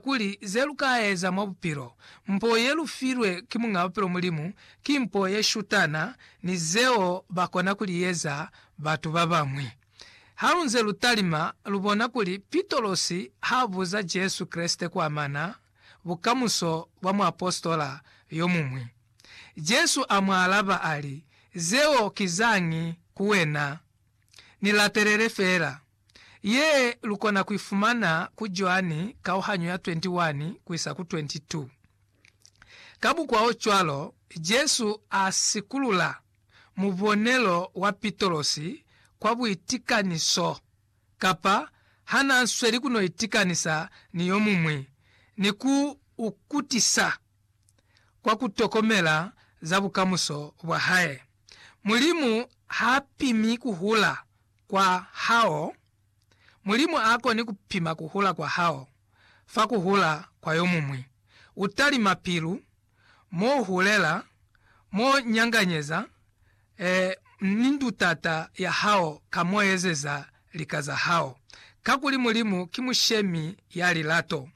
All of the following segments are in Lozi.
Kuli ze lu ka eza mwa bupilo, mpo ye lu filwe ki Muñ'a Bupilo Mulimu ki mpo ye shutana ni zeo ba kona ku li eza batu ba bañwi. Ha lu nze lu talima, lu bona kuli Pitolosi ha buza Jesu Kreste ku amana bukamuso bwa muapositola yo muñwi. Jesu a mu alaba a li, Zeo ki zañi ku wena. Ni latelele fela. Ye lukona kuifumana ku Joani kauhanyo ya 21 kuisa ku 22. Kabukwaocwalo, Jesu asikulula mubonelo wa Pitolosi kwa buitikaniso, kapa hanaasweli kunoitikanisa ni yomuñwi, ni ku ukutisa kwa kutokomela za bukamuso bwahae. Mulimu haapimi kuhula kwa hao, Mulimu a koni ku pima ku hula kwa hao fa ku hula kwa yo muñwi. U talima pilu, mo u hulela, mo u nyanganyeza, ee, ni ndutata ya hao ka mo u ezeza lika za hao. Kakuli Mulimu ki Mushemi ya lilato.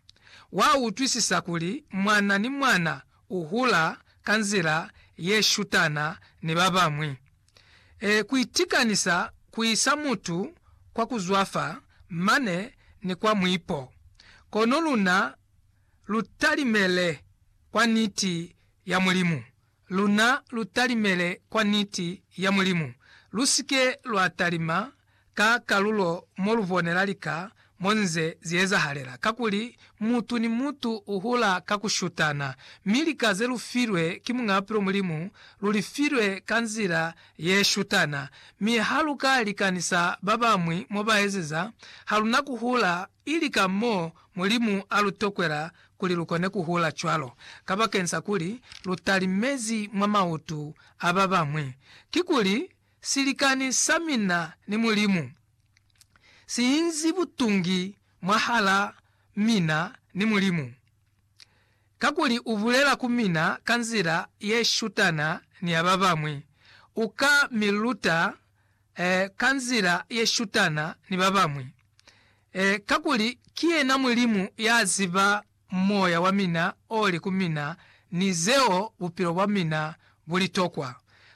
Wa utwisisa kuli mwana ni mwana u hula ka nzila ye shutana ni ba bañwi. e, ku itikanisa ku isa mutu kwa ku zwafa mane ni kwa mwipo, kono luna lu talimele kwa Niti ya Mulimu, luna lu talimele kwa Niti ya Mulimu, lu si ke lwa talima ka kalulo mo lu bonela lika mo nze zi ezahalela, kakuli mutu ni mutu u hula ka ku shutana, mi lika ze lu filwe ki Muñ'a Bupilo Mulimu lu li filwe ka nzila ye shutana. Mi ha lu ka likanisa ba bañwi mo ba ezeza, ha lu na ku hula, ili ka mo Mulimu a lu tokwela kuli lu kone ku hula cwalo, kabakeni sa kuli lu talimezi mwa mautu a ba bañwi. Kikuli, Silikani sa mina ni Mulimu si inzi butungi mwahal'a mina ni Mulimu, kakuli u bulela ku mina ka nzila ye shutana ni ya ba bañwi, u ka mi luta eh, ka nzila ye shutana ni ba bañwi eh, kakuli ki yena Mulimu ya ziba moya wa mina oli ku mina ni zeo bupilo bwa mina bu li tokwa.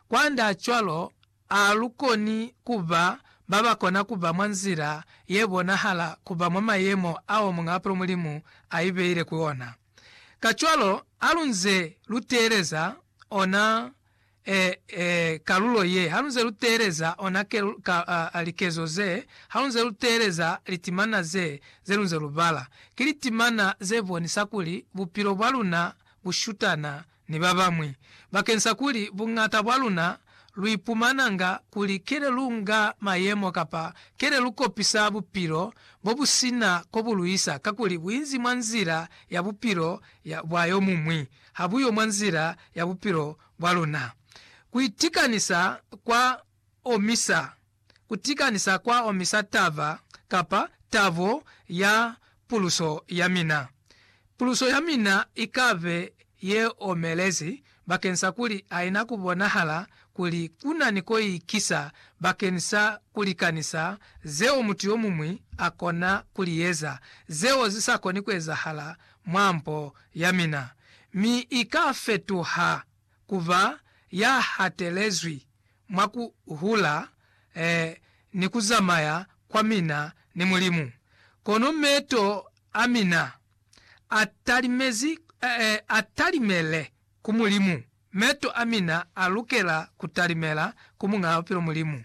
Kwand'a cwalo, a lu koni ku ba ba ba kona ku ba mwa nzila ye bonahala ku ba mwa mayemo ao Muñ'a Bupilo Mulimu a ibeile ku ona. Kacwalo, ha lu nze lu teeleza ona e, e, kalulo ye, halunze luteeleza ona ke, ka, a, a, likezo ze, halunze luteeleza litimana ze, ze lunze lubala, ki litimana ze bonisa kuli bupilo bwa luna bu shutana ni babañwi, bakensa kuli buñata bwa luna lu ipumananga kuli kele lu nga mayemo kapa kele lu kopisa bupilo bo bu sina ko bu luisa, kakuli buinzi mwa nzila ya bupilo ya, bwa yomuñwi. ha bu yo mwa nzila ya bupilo bwa luna. Ku itikanisa kwa omisa. Ku tikanisa kwa omisa taba kapa tabo ya puluso ya mina. Puluso ya mina i ka be ye omelezi bakeni sa kuli ha i na ku bonahala kuli ku na ni ko i kisa bakeni sa ku likanisa zeo mutu yo muñwi a kona ku li eza, zeo zi sa koni ku ezahala mwa mpo ya mina, mi i ka fetuha ku ba ya hatelezwi mwa ku hula eh, ni ku zamaya kwa mina ni Mulimu. Kono meto a mina a talimezi, eh, a talimele ku Mulimu. Meto a mina a lukela ku talimela ku Muñaa Bupilo Mulimu,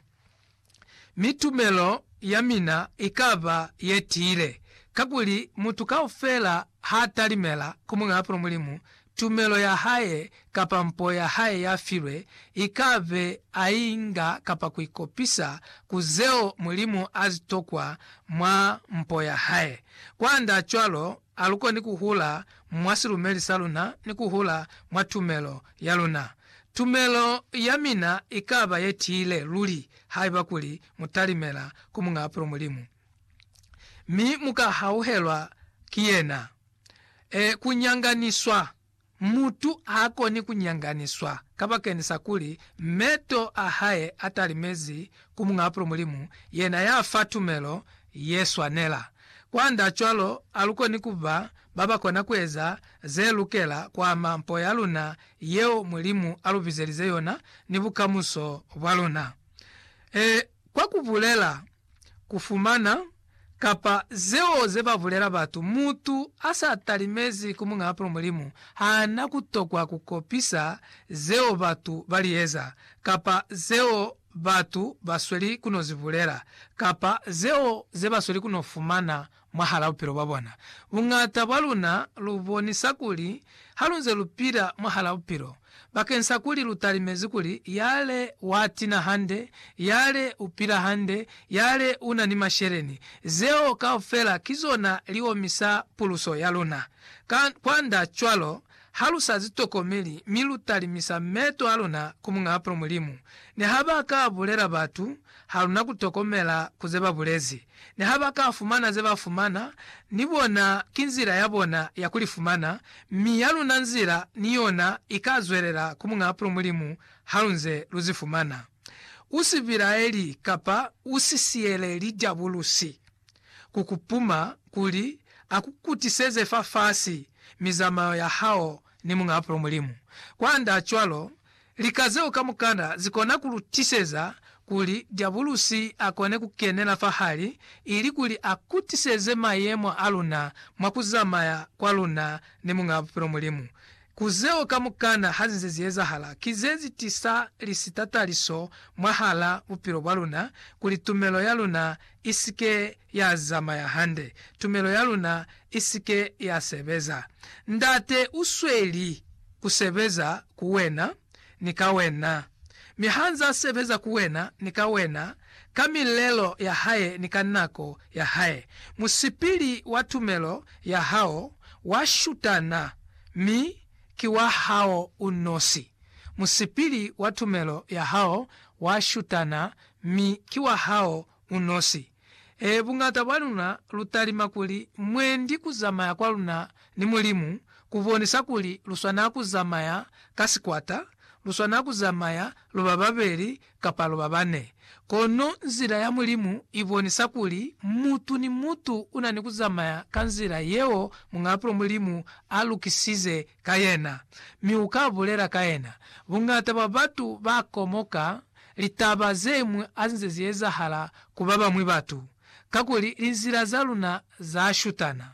mi tumelo ya mina i ka ba ye tiile. Kakuli mutu kaufela ha talimela ku Muñaa Bupilo Mulimu, tumelo ya hae kapa mpo ya hae ya filwe i ka be a i nga kapa ku i kopisa ku zeo Mulimu a zi tokwa mwa mpo ya hae. Kwand'a cwalo, Alukoni kuhula mwa silumeli saluna ni kuhula mwa tumelo yaluna. Tumelo yamina ikaba yetiile luli haiba kuli mutalimela ku Muñaapulo Mulimu, mi muka hauhelwa ki yena, e, kunyanganiswa. Mutu haakoni kunyanganiswa kabakeni sa kuli meto a hae atalimezi ku Muñ'a Apulo Mulimu, yena yafa tumelo yeswanela. Kwanda cwalo, alukoni kuba babakona kueza zelukela kuama mpo yaluna yeo Mulimu alubizelize yona ni bukamuso bwaluna. Ee, kwa kubulela ku fumana, kapa zeo ze ba bulela batu. Mutu a sa talimezi ku Muñaapulo Mulimu ha na ku tokwa ku kopisa zeo batu ba li eza, kapa zeo batu ba sweli ku no zi bulela, kapa zeo ze ba sweli ku no fumana Mwahal'a bupilo bwa bona, buñata bwa luna lu bonisa kuli ha lu nze lu pila mwahal'a bupilo bakeng sa kuli lu talimezi kuli yale wa tina hande, yale u pila hande, yale u na ni masheleni. Zeo kaufela ki zona li omisa puluso ya luna. Ka, kwand'a cwalo, Ha lu sa zi tokomeli mi lu talimisa meto a luna ku Muñ'a Apulo Mulimu, niha ba ka bulela batu, ha lu na ku tokomela ku ze ba bulezi. Niha ba ka fumana ze ba fumana, ni bona ki nzila ya bona ya ku li fumana, mi ya luna nzila ni yona i ka zwelela ku Muñ'a Apulo Mulimu ha lu nze lu zi fumana. U si bilaeli kapa u si siyeleli Diabulusi ku ku puma kuli a ku kutiseze fafasi mizamao ya hao ni Muñ'a Apulo Mulimu. Kwandaacwalo, lika zeo kamukana zi kona ku lu tiseza kuli Diabulusi a kone ku kenela fahali ilikuli a kutiseze mayemo a luna mwa ku zamaya kwa luna ni Muñ'a Apulo Mulimu Ku zeo kamukana ha zize zi ezahala, ki ze zi tisa lisitataliso mwahala bupilo bwa luna kuli tumelo ya luna i si ke ya zamaya hande, tumelo ya luna i si ke ya sebeza. Ndate u sweli ku sebeza ku wena. ni ka wena, mi ha nz'a sebeza ku wena ni ka wena, ka milelo ya hae ni ka nako ya hae, musipili wa tumelo ya hao wa shutana, mi ki wa hao u nosi. Musipili wa tumelo ya hao wa shutana, mi ki wa hao u nosi. Ee, buñata bwa luna lu talima kuli mwendi ku zamaya kwa luna ni Mulimu ku bonisa kuli lu swana ku zamaya ka sikwata, lu swana ku zamaya lu ba babeli kapa lu ba bane. Kono nzila ya Mulimu i bonisa kuli mutu ni mutu u na ni ku zamaya ka nzila yeo Muñaapulo Mulimu a lukisize ka yena, mi u ka bulela ka yena. Buñata bwa batu ba komoka Litaba ze ñwi azinze zi ezahala ku ba bañwi batu, kakuli linzila za luna za shutana.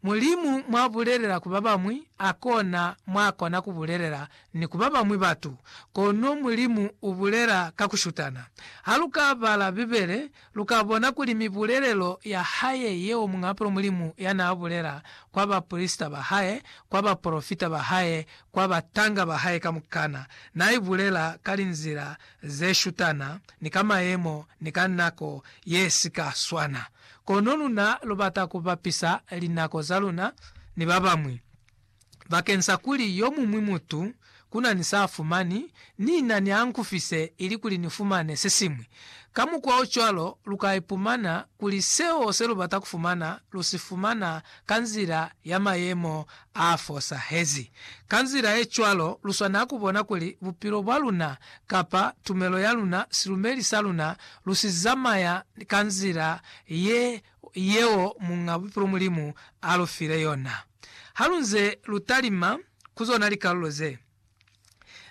Mulimu mwa bulelela ku ba bañwi, a kona mwa kona ku bulelela ni ku ba bañwi batu. Kono Mulimu u bulela ka ku shutana. Ha lu ka bala Bibele, Lu ka bona kuli mibulelelo ya hae yeo muñapulo Mulimu ya naa bulela kwa baprisita ba hae, kwa bapolofita ba hae, kwa batanga ba hae kamukana, naa i bulela ka linzila ze shutana ni ka mayemo ni ka nako ye si ka swana. Kono luna lu bata ku bapisa linako za luna ni ba bañwi. bakeng sa kuli yo muñwi mutu ku na ni sa a fumani, ni na ni a nkufise ili kuli ni fumane se siñwi. Ka mukwa o cwalo, lu ka ipumana kuli seo se lu bata ku fumana lu si fumana ka nzila ya mayemo a fosahezi. Ka nzila ye cwalo, lu swanela ku bona kuli bupilo bwa luna kapa tumelo ya luna, silumeli sa luna, lu si zamaya ka nzila ye, yeo Muñ'a Bupilo Mulimu a lu file yona. Halunze lutalima ku zona likalulo ze,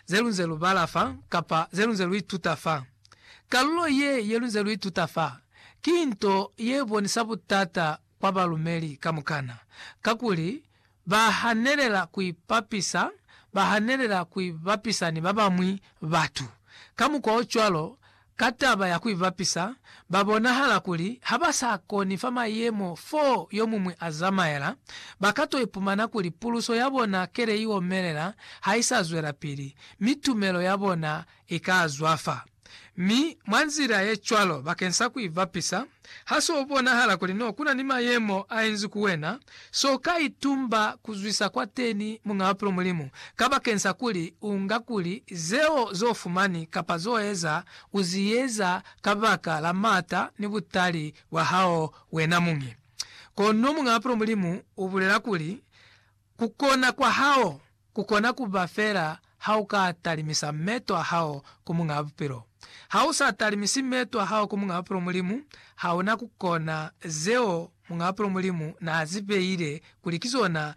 zelunze lubala fa kapa zelunze luituta fa, kalulo ye yelunze luituta fa ki nto yebonisa butata kwa balumeli kamukana, kakuli bahanelela kuipapisa bahanelela kuibapisa ni babañwi batu. Ka mukwa ocwalo, Ka taba ya ku ibapisa, ba bonahala kuli ha ba sa koni fa mayemo fo yo muñwi a zamaela, ba ka to ipumana kuli puluso ya bona kele i omelela ha i sa zwelapili, mi tumelo ya bona i ka zwafa. Mi, mwa nzila ye cwalo, bakeng sa ku ibapisa, Ha s'o bonahala kuli n'o kuna ni mayemo a inzi ku wena, s'o ka itumba ku zwisa kwateni Muñ'a Bapilo Mulimu, kabakeni sa kuli u nga kuli zeo z'o fumani kapa z'o eza u zi eza kabaka la m'ata ni butali bwa hao wena muñi. Kono Muñ'a Bapilo Mulimu u bulela kuli, Ku kona kwa hao. Ku kona ku ba fela ha u ka talimisa meto a hao ku Muñ'a Bupilo. Ha u sa talimisi meto a hao ku Muñ'a Bupilo Mulimu, ha u na ku kona zeo Muñ'a Bupilo Mulimu n'a zi beile kuli ki zona